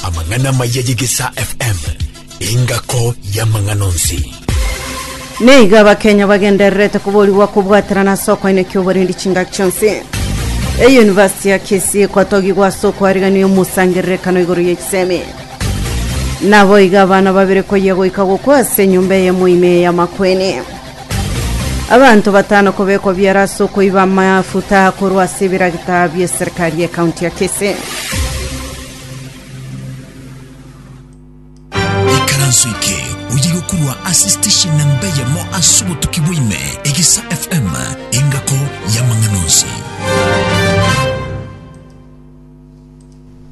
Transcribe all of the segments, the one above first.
Amang'ana maya y'Egesaa FM, engako y'amang'ana onsi. Nigo abakenya bagendererete koborigwa kobwaterana ase okwaina ki'oborendi chingaki chionsi eyunivasiti ya kisii kwatogigwa ase okwarigania omosangererekano igoro y'echisemi naboigo abana babere koyia goika gokwa ase enyomba eyemo ime y'amakweni Abanto batano kobekwa biara ase okoiba amafuta korwa ase ebiragita bi'eserikari ye county ya Kisii. ikaranso eke oyige korwa ase station na mbeyemo ase obotuki bwaime egisa fm engako y'amang'ana onsi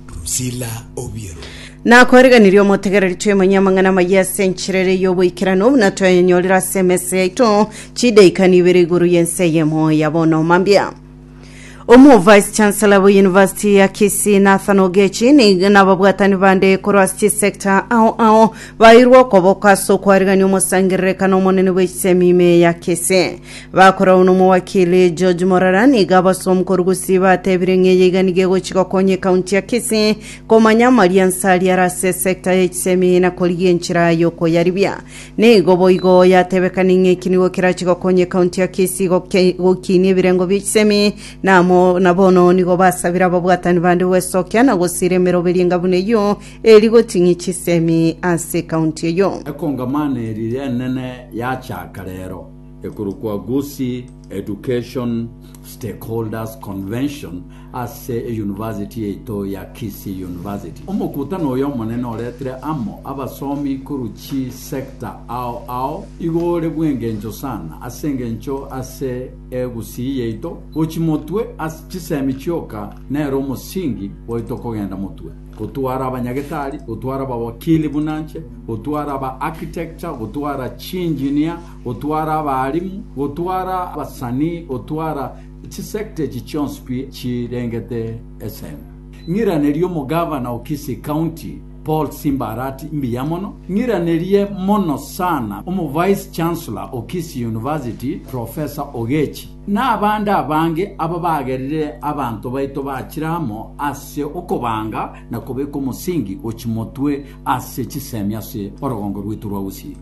Priscilla Obiero. Nakoriganirie omotegereri twemonye amang'ana amaya ase enchera ere y'oboikeranu buna twayanyorire ase emesa yaito chidaika nibere igoro y'ense eyemo ya bono mambia omo vice chancellor bo university ya kisii nathan ogechi ni- nababwatani bande korwa ase chisector ao ao bairwe okoboko ase okwarigania omosangererekano omonene bw'ensemo ime ya kisii Bakoragwa nomowakili George Morara nigo abasomu korwa Gusii batebire ng'a eye iga nigo egochi gokonya ekaunti ya Kisii komanya amaria nse aria are ase esecta ya echisemi na korigia enchera yokoyaribia. Nigo boigo yatebekani ng'a eki nigo kerache gokonya ekaunti ya Kisii goke- gokinia ebirengo bia echisemi na amo- na bono nigo basabire ababwatani bande gwesokia na gosiira emeroberio enga buna eyio eri goting'ia chisemi ase ekaunti eyio. Ekongamano eri rinene yachaaka rero. ekorokwa Gusii Education Stakeholders Convention ase eyunivasiti yaito ya Kisii University. Omokutano oyo omonene oretire amo abasomi korwa chi sector ao ao igo ore bw'engencho sana ase engencho ase Egusii yaito gochi motwe ase chisemi chioka nere omosingi bwaito kogenda motwe. gotwara abanyagetari, gotwara abawakili buna nche, gotwara aba architecture, gotwara chiengineer, gotwara abaarimu, gotwara abasanii, gotwara chisector echi chionsi pi chirengete esende. Ng'iranerie omogavana o Kisii County, Paul Simba Arati mbuya mono. Ng'iranerie mono sana omovice chancellor o Kisii University, Professor Ogechi. Nabande abange aba bagerire abanto baito bachire amo ase okobanga na kobeka omosingi o chimotwe ase chisemi ase orogongo rwaito rwa Gusii.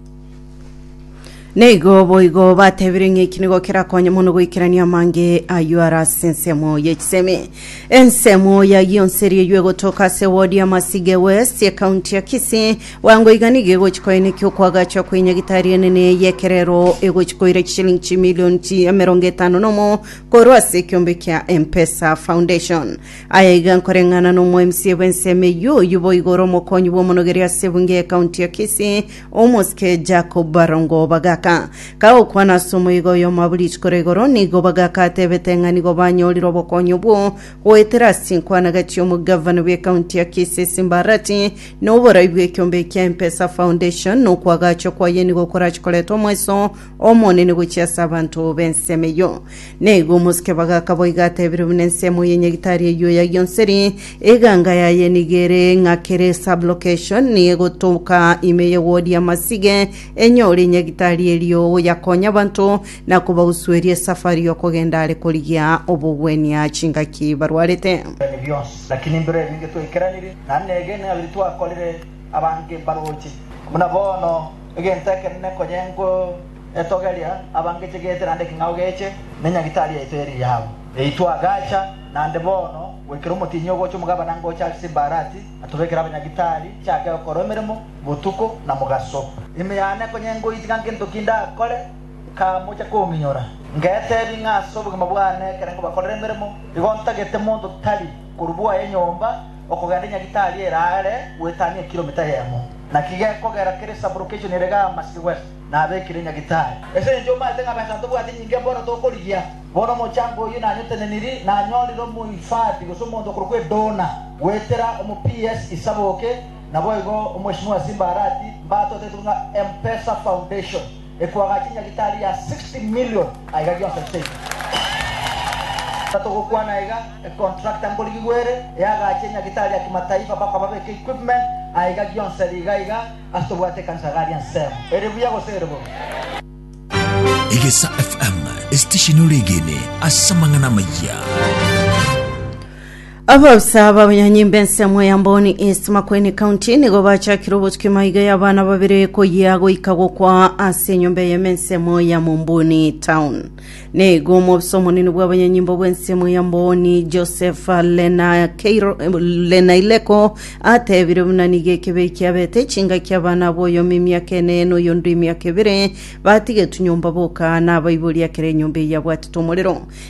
Na igo boigo batebire ng'a eki nigo kerakonye mono goikerania amange ayio are ase ensemo ye chisemi. Ensemo yayio nseria eywo egotoka ase ward ya Masige West, ekaunti ya Kisii, Bwango iga nigo egochi koenekia okoagachwa kwe nyagitari enene y'ekerero egochi koira chishilingi chimilioni chi emerongo etano nomo korwa ase ekiombe kia M-Pesa Foundation. Aya iga nkoreng'ana n'omoemsie bw'ensemo eyio oyio boigo ore omokonyi bw'omonogeri ase ebunge y'ekaunti ya Kisii, omosike Jacob Barongo Bagaka. Kagokwana ase omoiga oyomwabo rituko ria igoro, nigo Bagaka atebete ng'a nigo banyorire obokonyi obwo goetera ase inkwanagati y'omogavana bw'ekaunti ya Kisii Simba Arati Noborai bw'ekiombe ekia M-pesa Foundation nokwagachwa kwaye nigo korache koreta omweso omonene gochia ase abanto b'ensemo eyio. Na igo omosike bagaka boiga atebire buna ensemo y'enyagitari eyio ya Gionseri, eganga yaye nigo ere ng'a kere sub-location nigo egotoka ime ye ward ya Masige enyore enyagitari erio yakonya abanto na kobagusueria esafari y'okogenda are korigia obogwenia chingaki barwarete. Naki nimbiro ebinge twaikeraneire, na negenena ng'abiri twakorire abange mbaroche. Buna bono, egento ekenene konya enko etogeria, abange chegete naende ekeng'ao geche, ne nyagitari yaito eri yao. Yaitwa agacha naende bono, goikera omotienyi ogocha omogabana ngocha ase Simbarati, atobekere abanyagitari, chake gokorwa emeremo botuko na mogaso. Ime yane konya enko itiga ngento ki ndakore. Nkamocha kominyora, ngeteebia ng'a ase obogima bwane ekero nkobakorera emeremo, igo ntagete monto tari korwa bwaya enyomba okogenda Nyagitari ere aare goetania ekiromita eyemo. Naki gekogera kere sublocation ere Gama City West nabekire Nyagitari. Ase engencho omaete ng'a besa ntobwati nyinge bono tokorigia, bono omochango oyio nanyoteneniri, nanyorire omohifadhi gose omonto okorokwa Edona goetera omo PS Isaboke, naboigo Omweshimiwa Simba Arati mbatoteti buna M-Pesa Foundation. Ekwaga chinyagitari ya 60 million aiga gionsi nchaiga. Tatogokwana aiga, econtractor nkorigigwa ere eagache enyagitari ya kimataifa mpaka babeke equipment aiga gionsi ere iga iga ase tobwate ekanisa gari ensemo. Ere buya gose ere bobe? Egesa FM, esitesheni ore egene ase amang'ana amayia. Abaofisa b'abanyanyimba ensemo ya Mboni East Makueni County nigo bachakire obotuki maiga y'abana babere koyia goika gokwa ase enyomba eye ensemo ya Mumbuni Town. Neigo omobisa omonene bw'abanyanyimba bw'ensemo ya Mboni Joseph Lenakeiro- Lenaileko atebire buna nigo ekebei kiabete chingaki abana abo oyomo emiaka ene na oyonde emiaka ebere batigetwe nyomba boka na abaibori ekero enyomba eye yabwatete omorero.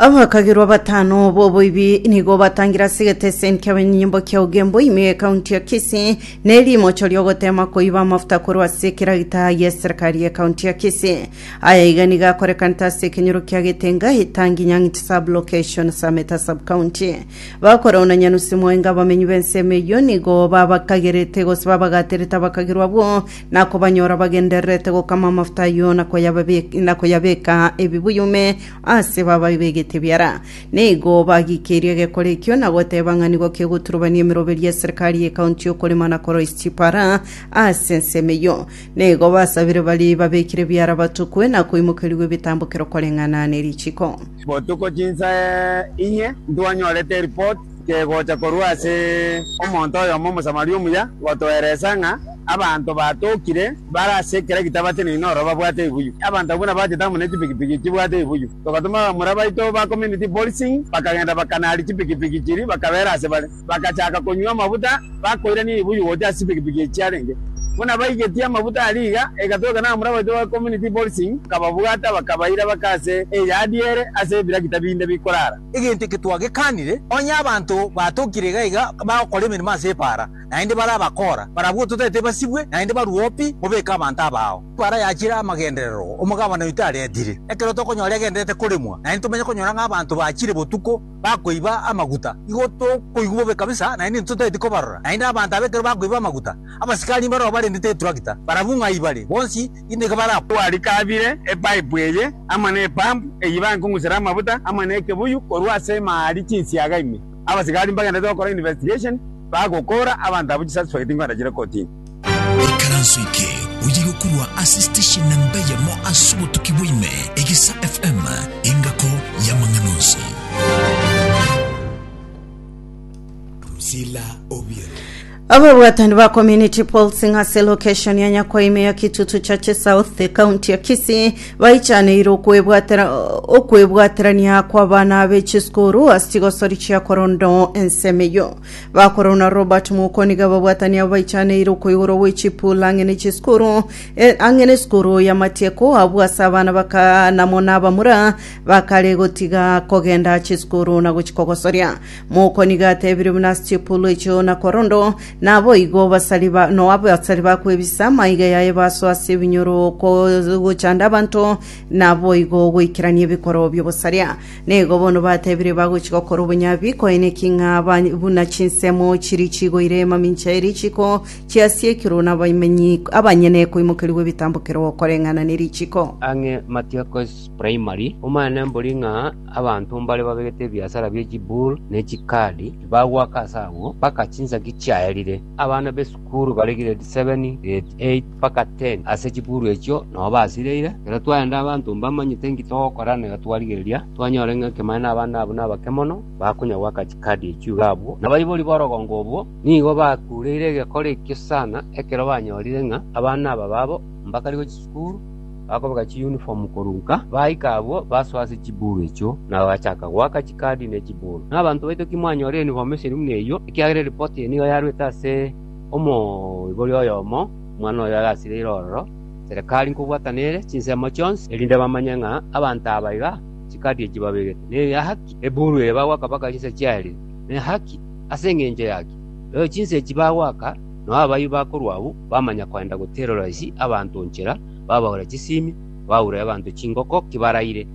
Abakagerwa batano b'oboibi nigo batangire ase egeteseni ki'abenyimbo kia Ugembo ime y'ekaunti ya Kisii na erimocho ri'ogotema koiba amafuta korwa ase ekeragita y'eserikari y'ekaunti ya Kisii. Aya iga nigo akorekanete ase ekenyoro kia Getenga, Itangi, Nyang'iti sub-location, Sameta sub-county. Bakora ona nyanusi mwaenga abamenyi b'ensemo eyio nigo babakagerete gose babagaterete abakagerwa abwo na kobanyora bagendererete gokama amafuta ayio na koyababe- na koyabeka ebibuyu ime ase bababe begete ebiara. Nigo bagikeirie egekora ekio na goteba ng'a nigo kegoturubania emeroberio y'eserikari y'ekaunti y'okorema na koroisia chipara ase ensemo eyio. Nigo basabire baria babekire ebiara batukwe na koimokerigwa ebitambokero koreng'ana ne richiko. Botuko chinsa inye ntwanyorete eripoti kegocha korwa ase omonto oyomo Omosamaria omuya gotoeresa ng'a abanto batokire bare ase ekero gitabateneine ororo babwate ebuyu. Abanto abwo nabachete amo ne chipikipiki chibwate ebuyu. Togatoma abamura baito ba community policing bakagenda bakanari chipikipiki chiria bakabeera ase bare. bagachaaka konywa amafuta, bakoirania ebibuyu gocha ase chipikipiki echi chiarenge. Buna baigetie amafuta aria iga, egatoka n'abamura baito ba Community Policing, bakababwata, bakabaira bake ase eyadi ere ase ebirakita binde bikorara. Egento eke twagekanire, onye abanto batokire iga iga bagokora emeremo ase ebaara, naende bare abakora, barabwo totaete basibwe, naende barue opi, mobeke abanto abao. Ebaara yachire amagenderero, omogabana oito aretire, ekero tokonyora egendererete koremwa, naende tomenye konyora ng'a abanto bachire botuko, bakoiba amaguta, igo tokoigwa bobe kabisa, naende intwe totageti kobarora. Naende abanto aba ekero bakoiba amaguta, abasikari mbaro barendete eturakita, barabwo ng'a ibare, bonsi inde iga barakwa. Twarikabire epaipu eye amo na epampu eyio ibae nkong'usera amabuta amo na ekebuyu korwa ase emari chinsiaga ime. Abasikari mbagendete gokora investigation, bagokora abanto abwo chisuspect nkoenda chire kotini. Ekaranso eke oye gokorwa ase station na mbeyemo ase obotuki bwaime, Egesa FM, engako y'amang'ana onsi. Drusilla Obiero. Ababwatani ba community pulsing ase location ya Nyakwaime ya Kitutu Chache South county ya Kisii baichaneire okwebwatera okwebwaterania kw'abana be chisukuru ase chigosori chia korondo ensemo eyo Bakoro na Robert Muko nigo ababwatani abo baichaneire okoigoro gwe chipul ang'e ne chiskuru e, ang'e ne skuru ya matieko abwo ase abana baka namo na abamura bakare gotiga kogenda chiskuru na gochi kogosoria. Muko nigo atebire buna ase chipul echio na korondo naboigo basari ba no abasari bakwebisa maiga yaye baso ase ebinyoro ko- gochanda abanto naboigo goikerania ebikoro biobosaria. Nigo bono batebire bagochia gokora obonyabi, koeneki ng'a buna chinsemo chiria chigoire mamincha eria richiko chiasiekirwe n'abamenyi abanyene koimokerigwa ebitambo kera okoreng'ana ne richiko. Ang'e Matiakos Primary, omanyene mbori ng'a abanto mbare babegete ebiasara bie chibull ne chikadi, tibagwaka ase agwo mpaka chinsaki chiaerire. Abana b'esukuru. Chibukuru bare grade seveni, grade eit, mpaka teni ase chibukuru echio nabo basireire. Ekero twaenda abanto mbamanyete inki togokora na igo twarigereria twanyora ng'a ekemane na abana abwo nabake mono, bakonya goaka chikadi echio iga abwo. Na abaibori b'orogongo obwo nigo bakureire egekora ekio sana ekero banyorire ng'a abana aba babo mbakare gochia chikuru. Bakobeka chiyunifomu korwa nka, baika abwo basoa ase chibuuru echio, na bagachaka goaka chikaadi ne chibuuru. Na abanto baito timwanyora eyunifomu esiri buna eyio, ekiagera eripoti eye nigo yarwete ase omoibori oyomo, omwana oyo oyasireire ororo, Serekari nkobwatana ere chinsemo chionsi, erinde bamanye ng'a abanto aba iga chikaadi echio babegete, n'ehaki ebuuru eye bagoaka mpaka chinsa chiaerire, n'ehaki ase engencho yaki rero chinsa echi bagoaka. Nao abayio bakorwa abwo bamanya koenda goterora isi abanto nchera, babaura chisimi, baura abanto chingoko ki baraire.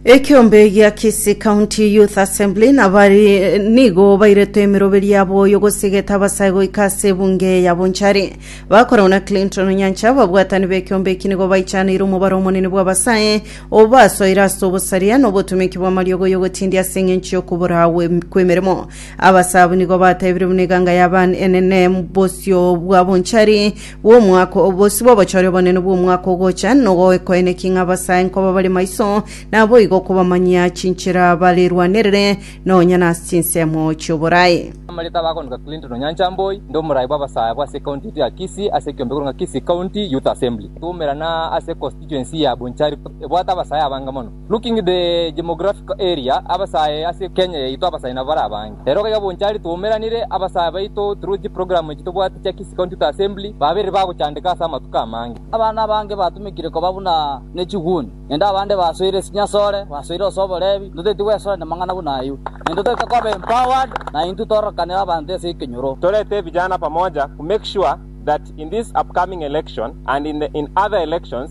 Ekeombe gia Kisii County Youth Assembly nabari nigo bairetwe emeroberi yabo oyo gosigeta abasae goika ase ebunge ya Bonchari. Bakoragwa na Clinton Onyancha ababwatani b'ekeombe eki nigo baichaneire omobaro omonene bw'abasae obasoire ase obosaria na obotomeki bw'amariogo y'ogotindia ase eng'encho y'okobora kw'emeremo. Abasabu nigo batebirie buna eganga ya Ban enene bosio bwa bonchari bw'omwaka o- bosio bw'obochori obonene bw'omwaka ogocha, nogoekoenekia ng'a abasae nkoba bare maiso, naboigo okobamanyia chinchera barerwanerere nonya nase chinsemo chi'oboraai. Amareta abagonika Clinton Onyancha Mboi, inde omoraai bw'abasae abo ase ecounty yaito ya Kisii ase ekiombe koreng'wa Kisii County Youth Assembly, twaumerana ase econstituency ya Bonchari ebwate abasae abange mono. Looking the demographical area, abasae ase Kenya yaito abasae nabo bare abange. Ere iga bonchari twaumeranire abasae baito through chiprogramu echi tobwate chia Kisii County Youth Assembly babeire bagochandeka ase amatuko amange. Abana abange batumekire koba buna nechiguni, naende abande basoire chinyasore, basoire ase oborebi. Ntotaeti gwesora namang'ana buna ayio, naende ntotaete koba empowered na intwe torokanere abanto ase ekenyoro. Torete evijana pamoja ku make sure that in this upcoming election and in the in other elections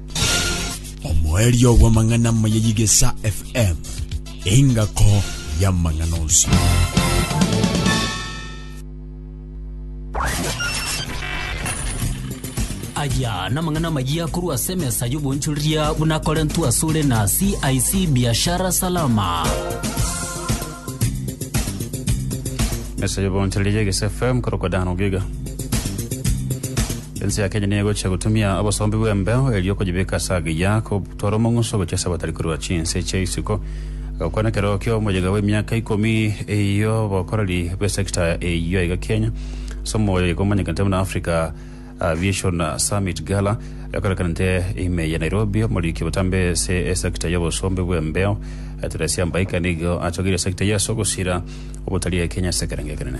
Omoerio bw'amang'ana amaya y'Igesa FM, engako y'amang'ana onsi. aya namang'ana amayia korwa ase emesa y'obonchoreria buna akorentwe asore na cic biashara salama Mesa y'obonchoreri y'Egesi FM korokwa Dan Ogiga. Ense ya Kenya niyo egochia gotumia obosombi bw'embeo erio okonyibeka ase agiya kotwara omong'uso gochia ase abatari korwa chinse chia isiko. Agakwana ekero kia omoyega bw'emiaka ikomi ey'obokoreri bw'esekta eyio iga Kenya ase omoyega omanyekete buna Africa Aviation Summit Gala ekorekanete ime ya Nairobi. Omoriki botambe ase esecta ya obosombe bw'embeo Teresia Mbaika nigo atogeire esecta eye ase ogosira ogotaria Kenya ase ekerengo ekenene.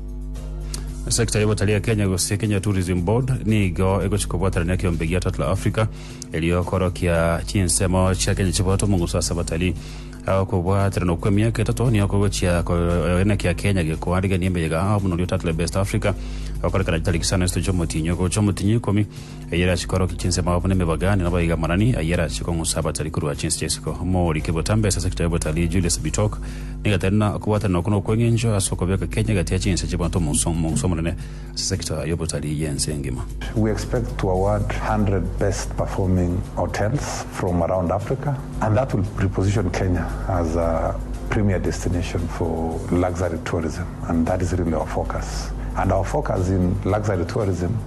Sector ya obotalii ya Kenya gose Kenya Tourism Board nigo egochia kobwatanania ekeombe gia Tatler Africa erio korokia chinsemo chia Kenya chiboto omonguso ase abatalii. Ao kobwatananwa kwa emiaka etato nigo kogochia koegena kia Kenya gekoarigania emeyega ao buna oria o Tatler Best Africa okorekana chitariki saa na isatu chia omotienyi ogocha omotienyi ikomi Ayare ase korokia chinsemo abwo nemebagane nabo iga amanani, ayare ase kong'usa abatari korwa chinse chia isiko. Omoorike botambe ase ekitabu Obotaari Julius Bitok nigo atari na okobwatanera okwo nokweng'enchwa ase okobeka kenya egati ya chinse chi'abanto omo nso omo onse omonene ase sector y'obotaari y'ense engima. We expect to award 100 best performing hotels from around Africa and that will reposition Kenya as a premier destination for luxury tourism and that is really our focus and our focus in luxury tourism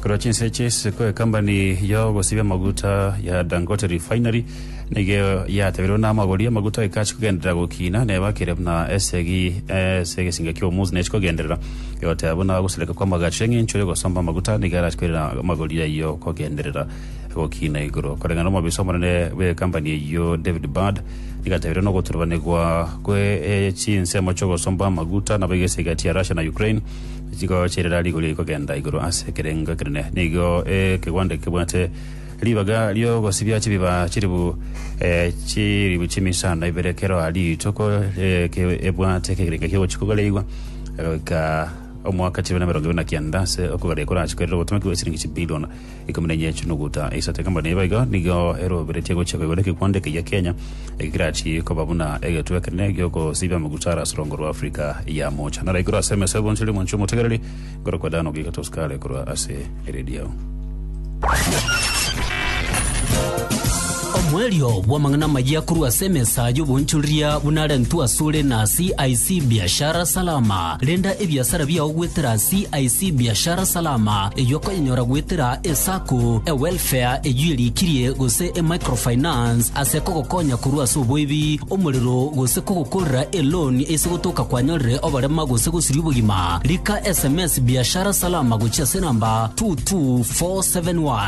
Korwa chinsa echi, isiko ekambani y'ogosibia amaguta ya Dangote Refinery nigo yateberwe na amagori amaguta ekachi kogenderera gokina nebakire buna esegi ase egesinga ki'omunsi nechi kogenderera egoteba buna ogosereka kw'amagacho eng'encho y'ogosomba amaguta nigo arachi koirera amagori ayio kogenderera gokina igoro koreng'ana omobisa omonene bw'ekambani eyio David Bird nigo ateberwe nogoturubanigwa kwe chinsemo chi'ogosomba amaguta nabo egese egati ya Russia na Ukraine chigocherera rigori rigokenda igoro ase ekerengo ekenene. Nigo ekegonde kebwate ribaga ri'ogosibia chibiba chiribu eh, chiribu chimisano ibere kero a rituko eh, ke- ebwate ekerengo ki'ogochia kogareigwa egoika omwaka chibere na emerongo ibere na kianda ase okogareigwa korachikorere obotomeki bw'esiringi chibilion Ikomi na inye chinuguta isato ekemorio neiba iga nigo eroberetie gochia koigwa nekekwando eke gia Kenya eke kerachi koba buna egetwe ekenene giokosiibia amaguta are ase orongo rwa Africa ya Moocha. Nare igoro ase emesa y'oboonchori omonchie omotegereri, nkorokwa Dan Ogiga Tosukale korwa ase eredio. Omoerio bw'amang'ana amayia korwa ase emesa y'oboonchoreria buna arentwe asore na CIC Biashara Salama. Renda ebiasara biao goetera CIC Biashara Salama, eyio okoyenyora goetera eSacco, eWelfare eyio erikirie, gose eMicrofinance ase kogokonya korwa ase oboibi, omorero, gose kogokorera eloan ase gotoka kwanyorire oborema gose gosiria obogima. Rika sms Biashara Salama gochia ase enamba 22471.